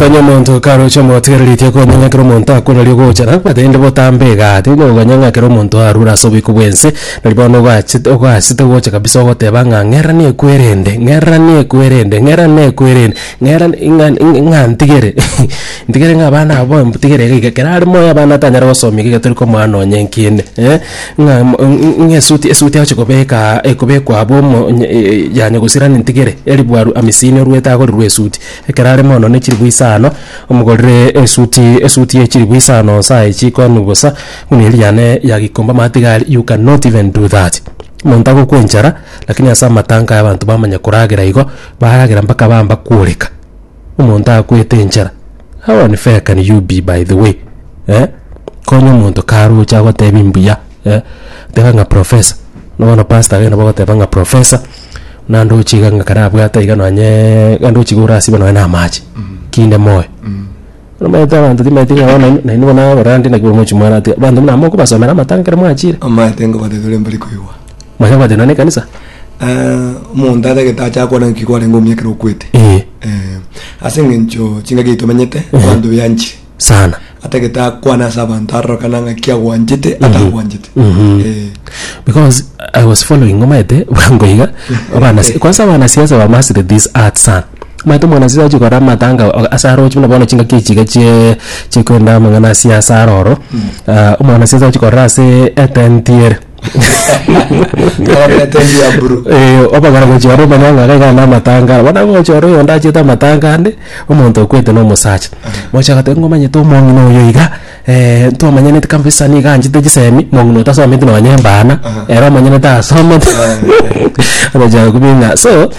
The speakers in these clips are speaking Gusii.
Konya omonto karoche omotigereretie konya ng'a ekero omonto akora rirogo ogochara, omanyete rende botambe igaa, tindi kokonya ng'a ekero omonto arure ase oboiko bw'ense, nari bono ogachete ogasete gocha kabisa ogoteba ng'a ng'era nekwerende, ng'era nekwerende, ng'era nekwerende, ng'era ng'a ng'a ng'a ntigere ntigere ng'a abana aba bono ntigere iga iga, kerare moyo abana tanyare gosomia iga iga tori komoa nonye enkende eh, ng'a mo ng'a ng'a esuti esuti agochia kobekaa ekobekwa abwo omo onye ya nyagusirani ntigere, eribuaru amisini oruete agorerwe esuti. Ekero are mono ne chilifu isano, omogorere esuti, esuti ye chilifu isano nsae chikonu bosa, buna eriane ya gikomba matigari, you can not even do that. Monto agokwa enchara, lakini ase amatanka aya abanto bamanya koragera igo, baragera mpaka bamba kworeka. Omonto akwete enchara. How unfair can you be by the way? Eh? Konya omonto karoche agotebie mbuya. eh, teba ng'a professor. Na bono pastor agende bagoteba ng'a professor, na ndoche iga ng'a karabwate iga nonye ga ndoche iga orasibe nonye na amache, kinde moyo. Omanyete abanto timaeti ng'a bono nainwe- nainwe bono abarwandi naki bomochi mwana ati abanto buna mokobasomera amatanga ekero mwachire. Omanyete ng'a baria tore mbari koigwa. Mwanya kwate nonye na ekanisa. Eh, omonto atagete acha akwana ng'aki kwarenge omia ekero okwete. Ee. Eh, ase eng'encho chingaki tomenyete abanto beanchire. Sana. atagete akwane ase abanto arorokana ng'a ki agwanchete atagwanchete Mhm. Eh, because I was following omaete bwango iga abana kwanza abana siasa ba master this art sana omaete mwana siasa achi kora matanga o- ase aroche buna bono chingaki echiga chie chiekwenda amang'ana a siasa aroro Ah, omwana siasa achi kora ase etent ere Abarwete enchwe ya buru. Eh, obagora gochia ore omonyang'a iga iga na amatangara bono agocha ore oyonde achiete amatanga ande omonto okwete na omosacha mocha agateba ng'a omanyete omong'ina oyo iga eh, twamanyeti kabisa niga anchete chisemi mong'ina oyo tasometi nonye ebana ere omonyorete asomete ogocha gokobia ng'a so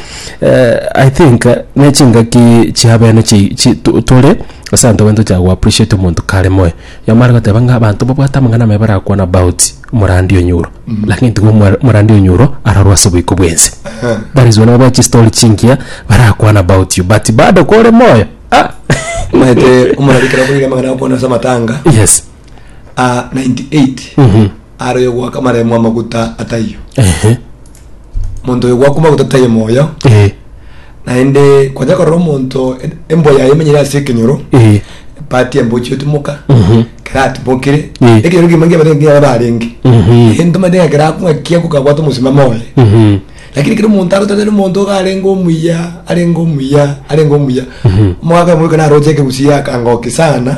eh, I think eh, ne chingaki chia abene chi- chi to- tore ase abanto baye tochaka go appreciate omonto kare moyo. Nyomba are goteba ng'a abanto babwate amang'ana amaya barakwane about omorandi o nyuro, lakini tiga omwa- omorandi o nyuro arorwe ase oboiko bw'ense. That is why nabo bae chistory chingiya barakwane about you but bado kore moyo ah! Omanyete omorari ekero akoire amang'ana agokwana ase amatanga yes ah, 98 Mhm. aroyo goaka amaremo amaguta ataiyo Ehe. omonto oyo gwakuma gotataia omoyo eh, naende kwanja korora omonto e- embwa yaye emenyere ase ekenyoro eh, epati embwa ochiotumoka mhm, keratimokire Mm. ekenyoro kegima nkiabate nkiaba barenge Mhm. ere ntomate ng'a kerakung'a kiaku kabwate omosimamo oye mhm, lakini kera omonto agotanera omonto iga arenge omuya arenge omuya arenge omuya omogaka omoika naroche ekegusi yakangoki sana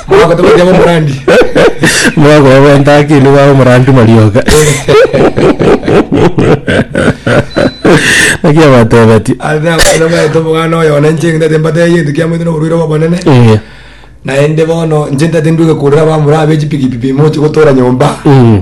Mwagotobekera omorandi. Mogoe gwenta akili bwa omorandi marioka. Naki abatebetie. Ase abana baito omoganda oyo one inche ng'endete mbatae egento kiamoete na oborwaire obonene. Eh. Naende bono inche ntati ndue gekurera abamura abe chipikipipi mochi gotora nyomba. Mm.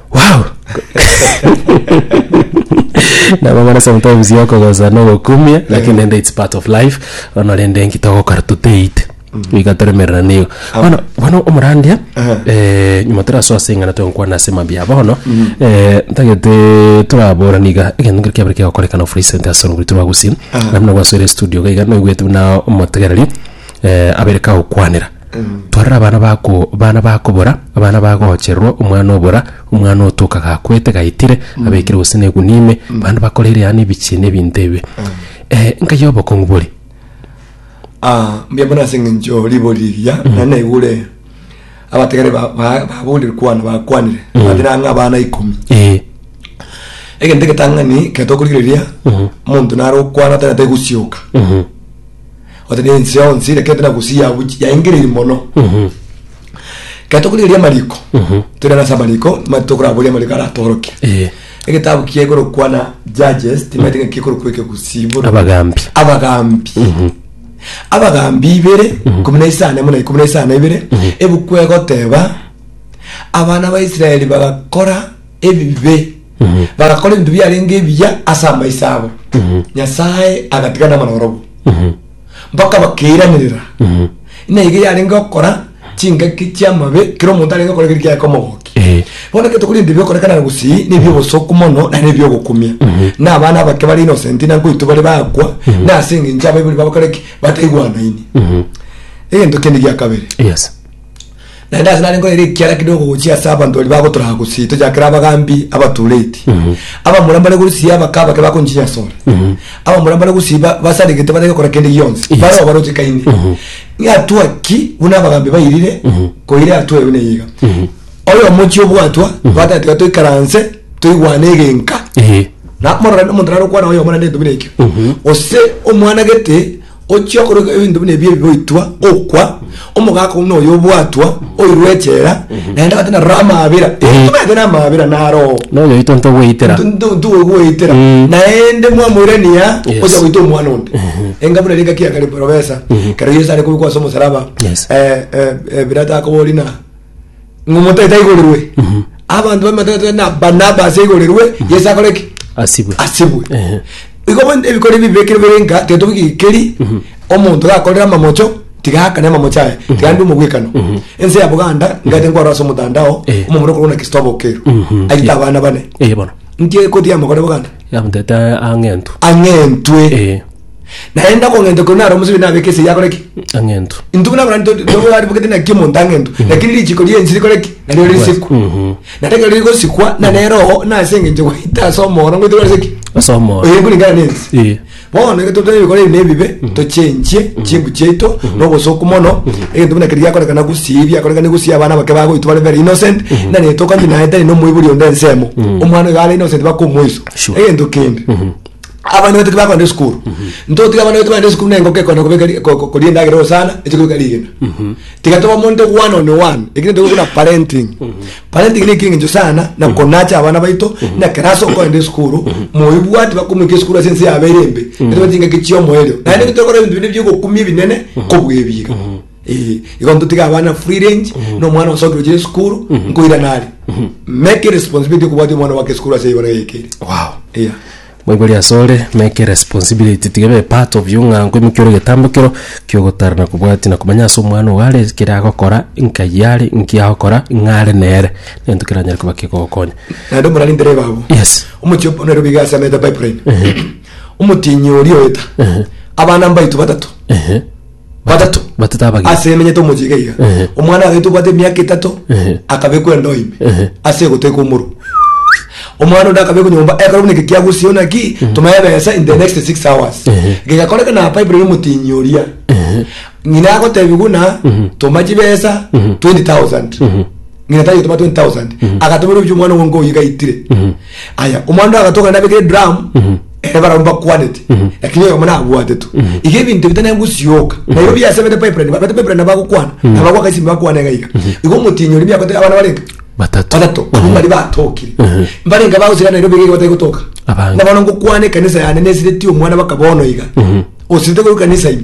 wow nabang'ana sometimes yokogosa nogokumia lakini rende its part of life bono rende nki togokora toteite iga toremerera nigo bono bono omorandia eh, nyuma torasoa ase eng'ana togokwana ase mambia bono eh, ntagete toraborani iga egento nkere kiabere kegokorekana of recent ase orogori tobagusii nabuna gwasoire studio iga naigwete buna omotegereri eh, abere kagokwanera Twarora abana bako, abana bakobora, abana bagoochererwa, omwana obora, omwana otoka gakwete, gaitire, abekire gose negunia ime, bande bakoreire yaani ebichie na ebinto ebi. Eh, nkai obokong'u bore. Ah, mbuya mono ase eng'encho ribori riria nari naigure abategere ba- ba- baborire kwana bakwanire bande nang'a abana ikomi Eh, egento egetang'ani kero tokorigereria omonto nare okwana tari nategosioka mhm, Ote na ense yonsi ere kente na gusii yabu yaengereiri mono. Ekero tokorigereria amariko, toirane ase amariko, nigo tokoraboria amariko aratorokia. Eh. Egetabu kiakorokwa na Judges, timaeti ng'a kiakorokwa ekegusii bono. Abagambi. Abagambi. Abagambi ibere, ikomi na isano amo na ikomi na isano ibere, ebuku egoteba, abana ba Israeli bagakora ebibe. bagakora ebinto biarenge ebiya ase amaiso abo nyasae agatiga namarorogo mpaka bakeiranirera ina iga yarenge okora chingaki chiamabe kero omonto arenge okora keri kiaye komogoki Eh. bono ekero tokori ebinto bigokorekana na gusii na ebiobosoku mono naende ebiogokumia na abana abake bare innocent na nkoito bare bakwa na ase engencho abaibori babo bakore ki bataigwanaini egento kende gia kabere Yes. naende ase nare nkorere ekiara kidogo gochia ase abanto baria bagotoraga gosii tochakere abagambi abatureti abamura mbare gosii abaka abake bakonchinyasora abamura mbare gosii ba- basaregete batari gokora kende gionsi Yes. bare obarochekaine ng'atua ki buna abagambi bairire koira atua eyo neiga oyo omochie obwatwa bwatete tiga toikaranse toigwane egenka Ehe. namorora nomonto narokwana oyo omwana nento buna ekio gose omwana gete Ochia okorwa ebinto buna ebi ebigoitwa, okwa, omogaka buna oyo obwatwa, oirwe echela, naende agate naroro amaabera. Intwe tobegete namaabera naroo. Nonya oito ntogweitera. Ntogweitera. Mm. Naende mwamoirania Yes. ocha goita omwana onde. Enga buna ringa kia kare porobesa. Kero Yesu are kobekwa ase omosalaba. Yes. Eh, eh, eh, Pilato akobori na ng'a omotaito aigorerwe abanto bamataito na barnabas aigorerwe yesu akore ki asibwe asibwe Ehe. igo bono ebikori ebi bibekire bire nka tetobigikeri omonto gakorera amamocho tigakane amamocho aya tigande omobwekano ense ya buganda ngaete nkwaro ase omotandao Eh. omomura okorwa na kristo abokero Mhm. aite abana bane eye bono ntie koti yamokore buganda yamutete ang'entu ang'entwe Eh. naende okong'enta okwo naro omosubi nabeke ase eyakore ki ang'entu intu buna buna nto- ntogo aribugete naki omonto ang'entu lakini richiko riensi rikore ki nario risikwa Mhm. na reke rigosikwa na nero oo nase eng'encho gwaita ase omoro ngoite korese ki ase omoro oyo nkoringana nensi Eh. bono egento tore gokora ebi na ebibe tochenchie chimbu chiaito na obosoku mono egento buna keri giakorekana gusii biakorekane gusii abana bake bagoitwa bare very innocent nane tokonye naye tari na omoibori onde ensemo omwana oyo are innocent bakomoiso Sure. egento kende abana betu kibakogenda esukuru ntotiga abana betu bagenda esukuru na engoko ekogenda kobeka ri- ko- ko- koria endagera gose sana eche kobeka rigena tiga tobe omonto one on one ekere ntobe buna parenting parenting nekere eng'encho sana na konacha abana baito na class okogenda esukuru moibwati bakomoika esukuru ase ense yabeire embe etobe chingaki chiomoerio naende tokora ebinto binde biogokumia ebinene kobua ebiira Eh, igo ntotiga abana free range na omwana osokire ochire esukuru nkoira nari make responsibility okobwatia omwana wake esukuru ase igoro yaikere wow yeah moibori asore make responsibility tiga ebe part of you ng'a nkoimokia ore getambo kero kiogotara na kobwatia na komanya ase omwana ogo are kere agokora nkai are nki agokora ng'a are nere nento keranyare koba kegogokonya naende omorani ntere babu yes omochie opo nairobi iga ase amete pipeline omotienyi oria oeta abana mbaito batato ehe Batato. Batato abagima. Ase emenyete omochika iga. Ehe. Omwana agete obwate emiaka etato Ehe. akabekwa endoo ime Ehe. ase egoteka omoro. Omwana onde akabekwa nyomba ekero buna eke kiagusio naki toma ebesa in the next six hours. Ehe. Gegakoreka na Bible ya omotinyi oria. Ng'ina agotebi buna toma chibesa 20,000. Ng'ina tari gotoma 20,000. Agatomera obuya omwana ogo nka oyio gaitire. Aya omwando agatokana nabekire drum ere barabwo bakwanete lakini oyomo nabwatetwe iga ebinto bita nengusioka nairo biasemete pipeline babete pipeline nabagokwana nabagwaka esimi bakwane iga iga iga omotinyi ori biakote abana barenge Batato. batato abwo bari batokire mbarenga bagosira nairo bigeri batari gotoka Abange. nabono ngokwana ekanisa yane nesireti omwana baka bono iga osirete goika kanisa ime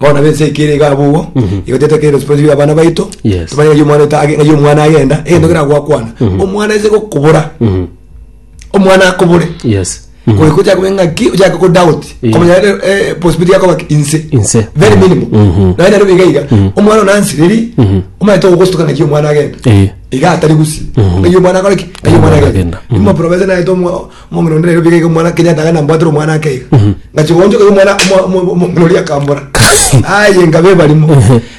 Bono abe ense eye kere iga abwo igo, igo tete kere responsibility y'abana baito, Yes. tobanye ng'ai omwana oito age- ng'ai omwana agenda, egento kera gwakwana, omwana ase gokobora, Mhm. omwana akobore, Yes. Mhm. goika ochake koba eng'aki, ochake ko doubt, Yeah. komanya rero, eh, possibility yakoba ki- inse. Inse. Very minimal. Mhm. Naye nero biga iga, omwana ona ansireri, Mhm. omanye togogostuka ng'aki omwana agenda. Eh. Iga atari gusi. Mhm. Ng'ai omwana akore ki? Ng'ai omwana Omwana agenda. agenda. Mhm. Imo province naye tomo- Omong'ina onde rero biga iga omwana Kenyatta iga nambwatire omwana ake iga. Ngachia goonchoka iga omwana omo- omo- omo- omong'ina oria akambora. Aye nkaba ebarimo.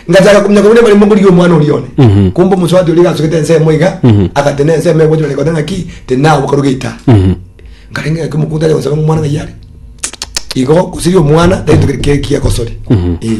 Ngachaka kominyoka buna ebarimo nkorigia omwana oria one. Kumbe omosubati oria iga asugete ensemo iga, agate na ensemo egwete buna ekoteba ng'aki, tinabu karuga ita. Nkarenge ng'aki omokungu tacha gosaba ng'a omwana ng'ai are. Igo gosiria omwana, tari ntoki kere kiagosori. Eh.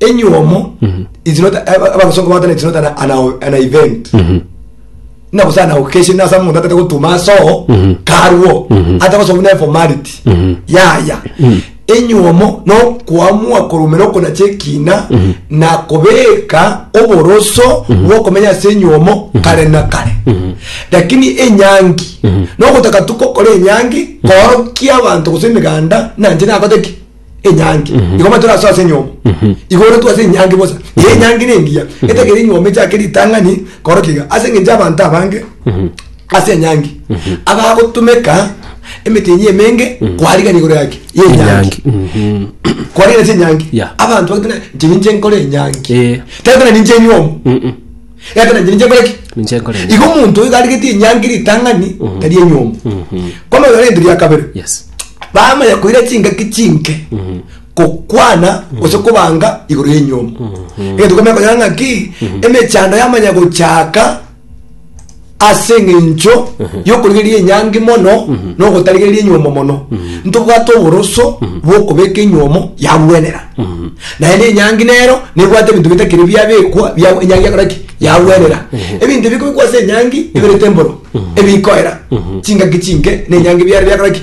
enyuomo is not abasongo batana is not an, an, an event na gose an occasion asa omonto atete gotuma asoo karuo ata gose obune formality yaya enyuomo no kwamua korumera okonacha ekina na kobeka oboroso bwokomenya ase enyuomo kare na kare lakini enyangi no gotaka tukokora enyangi korokia abanto gose emeganda nanje nakoteki enyangi igo matu raso ase enyomo igo ore twase enyangi bosa eye enyangi ne engiya etegere enyomo echake ritang'ani koro kiga ase eng'encho abanto abange ase enyangi abagotumeka emetenyi emenge kwarigana igoro yaki ya enyangi kwarigana ase enyangi Yeah. abanto bagotuna nche ninche nkore enyangi Eh. tari buna ninche enyomo Egaka nainche ninche nkore ki? Ninche nkore ki? Igo omonto oyo garigetie enyangi ritang'ani mhm. tari enyomba. Mhm. Kono oyo rento ria kabere. Yes. Bamanya koira chingaki chinke mhm. kokwana gose kobanga igoro ya enyomba. Egento komenya konyora ng'aki emechando yamanya gochaka ase eng'encho y'okorigereria enyangi mono na ogotarigereria enyuomo mono ntobwate oboroso bw'okobeka enyuomo yagwenera naende enyangi nero nebwate ebinto bitakiri biabekwa bia- enyangi yakora ki yagwenera ebinto ebikobekwa ase enyangi eberete emboro ebikoera chingaki chinke na enyangi biare biakora ki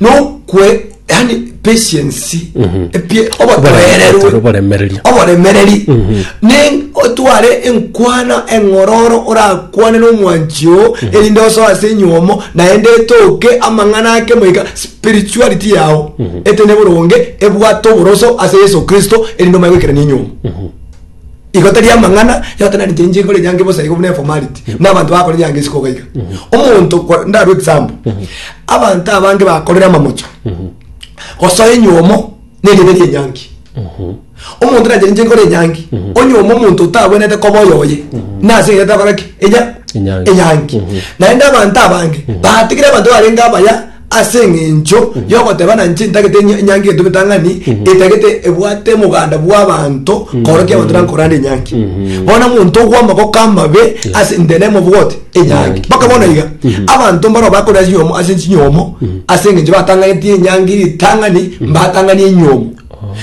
nokwe yani patience Mhm. epie obotoereru Oboremereri, oboremereri. oboremereri Ne- otware enkwana eng'ororo orakwane nomwanchi oo erinde osoe ase enyomo naende etoke amang'ana ake moika spirituality yao etene boronge ebwate oboroso ase yeso kristo erinde omanye goikerania enyomo Igo tari amang'ana yatananete inche nkore nyange bosa igo buna eformality buna abanto bakore nyange isiko iga iga omonto kwa- ndarue example abanto abange bakorire amamocho gosoa enyomo na erieta ria enyangi omonto nare inche nkore enyangi onyoma omonto otabwenerete koba oyo oye nase erieta akore ki enya Enyangi. enyangi naende abanto abange batigire abanto barenge abaya Ase engencho y'ogotebana nche ntagete enya- enyangi gento getang'ani, etagete ebwate moganda bw'abanto korokia abanto na nkorande enyangi. Bono omonto ogwa amagoko amabe ase intee na emobogoti enyangi. Mpaka bono iga, abanto mbaro bakore ase enyomo ase chinyomo ase engencho batang'aneti enyangi ritang'ani mbatang'ani enyomo.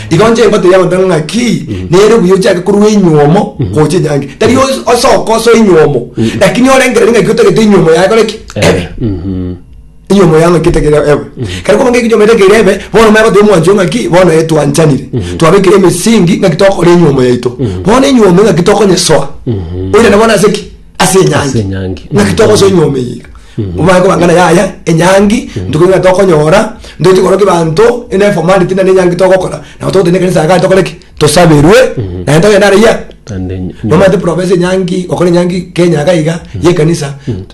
Igo nche ngotebi abanto ng'a ng'aki, nere buya ochake korwa enyomo gocha enyangi. Tari os- osoka ase enyomo, lakini orengereri ng'aki otagete enyomo yaye ekore ki? Ebe. Eyi omoyang'akete kere ebe. Kare koba ng'eki nyomete kere ebe, bono maya goteba omwancho ng'aki, bono eh, twanchanire. Twabekire emesingi ng'aki tokore enyuomo yaito. Bono enyuomo ng'aki tokonyesoa. Oirane bono ase ki? Ase Ase enyangi. enyangi. Ng'aki togosoa enyuomo eye iga. Omanye koba ng'a yaya enyangi, ntuko igana tokonyora, ntoeti korokia ebanto, ende eformality naende enyangi togokora. Nabo togoteba na ekanisa iga tokore ki? Tosaberwe, naende togende are yia? Naende enyu- Nomanyete province enyangi, gokora enyangi Kenya iga iga, ye ekanisa.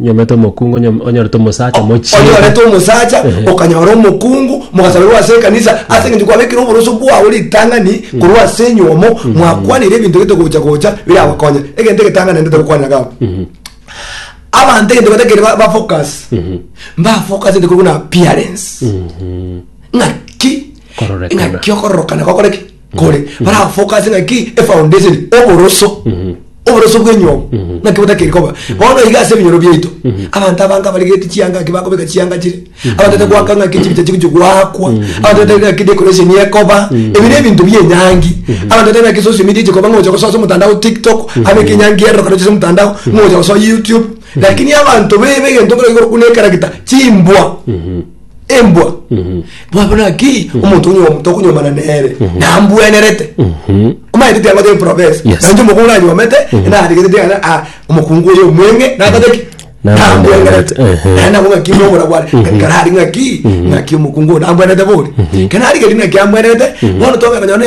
Onyomete omokungu onyo- onyorete omosacha mochie. onyorete omosacha Ehe. okanyora omokungu mogasaberwa ase ekanisa ase eng'encho kwabekire oboroso bwao ritang'ani korwa ase enyomo mwakwanire ebinto gete gocha gocha birabakonye egento egetang'ani naende tokokwanera gabo abanto egento batakeire ba- bafocus mbafocusete korwa buna appearance ng'aki Kororokana. ng'aki okororokana gokore ki nkore barafokase ng'aki efoundation oboroso oboroso bw'enyomba ng'aki botakeri koba bono iga ase ebinyoro biaito abanto abange abaregeti chianga ng'aki bakobeka chianga chire abanto bataete goaka ng'aki chibicha chigochi goakwa abanto bataete ng'aki decoration ekoba ebi na ebinto bia enyangi abanto bataete ng'aki social media echekoba ng'a ogocha gosoa ase omotandao tiktok abeke enyangi ere rokarogete ase omotandao ng'a ogocha gosoa youtube lakini abanto bebe egento nkero igoro buna ekaragita chimbwa embwa mwabona ki omonto onye omoto okonyomana nere nambwenerete omaete tiago te profesa Yes. nanje omokong'u nanyomete naregete tiana a omokungu oyo omweng'e nakata ki nambwenerete Ehe. naye nabo ng'aki nomora bwane nkarari ng'aki ng'aki omokungu oyo nambwenerete bori kenarigeri ng'aki ambwenerete bono tong'ana nyone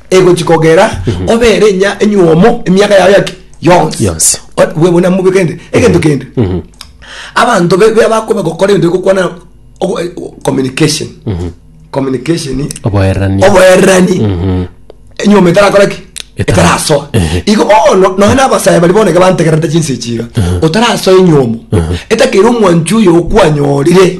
egochi kogera obere enya enyuomo emiaka yao yaki yonsi Yonsi. O- bwe- buna mube kende egento kende abanto be- be- bakoba gokora ebinto bigokwana ogo- eh, communication communication oboerani oboerani enyuomo etarakora ki Etara- etarasoa Ehe. igo bono noe nabasaya bari boneke bantegerete chinse echiga otarasoa enyuomo etakeire omwanchi oyo okwanyorire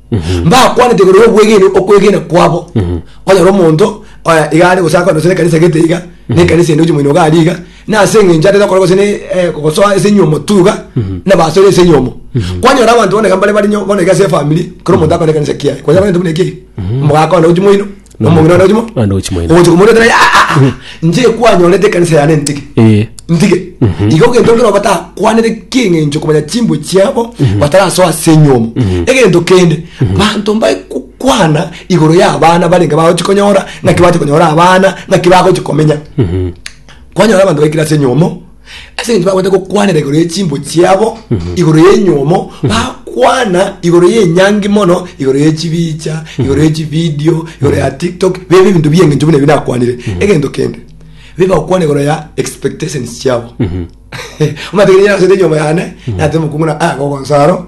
mbakwanete igoro y'obwegenwa okwegena kwabo onyore omonto oya iga are gose akwane gose nekanisa egete iga na ekanisa ende ochi moino iga aria iga na ase eng'encho atete gokora gose ne eh, gosoa ase enyomo tu iga nabasore ase enyomo kwanyora abanto bono iga mbare barinyo bono iga ase efamiri kera omonto akore ekanisa kiaye kwanyora buna intwe buna ekiagera omogaka one ochi moino Omong'ina one ochimo. One ochimo ene. Ogocha komoretera ya ah, ah, ah. Nche kwanyorete ekanisa yane ntige. Eh. Ntige. Igo ogento nkero batakwanete keng'encho komanya chimbo chiabo batarasoa ase enyomo. Egento kende banto mbae kukwana igoro ya abana barenge bagochi konyora naki bache konyora abana naki bagochi komenya. Kwanyora abanto baikire ase enyomo Ase eng'encho bagwete gokwanera igoro ye chimbu chiabo igoro y'enyuomo, bakwana igoro y'enyangi mono, igoro ye chibicha, igoro ye chividio, igoro ya TikTok, bibe ebinto bi'eng'encho buna ebi nakwanire. Egento kende, bibe bagokwana igoro ya expectations chiabo. Omanyete ekero nyasaete enyuomo yane, nateba omokungu ng'a, "Ah, gogonsa aro,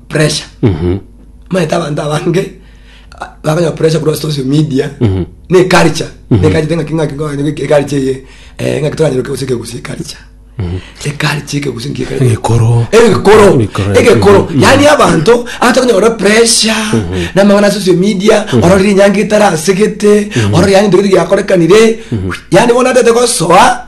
pressure maete abanto abange a- bakanywa pressure korwa social media na eculture na eculture ng'aki ng'aki ng'aki ng'aki eculture eye eh, ng'aki toranyeroke gose ekegusi eculture eculture ekegusi nki eculture Egekoro. egekoro Egekoro. egekoro yani abanto abatokonyora pressure namang'ana ya social media ororire enyanga etarasegete ororire yani ntoki giakorekanire yani bono atete gosoa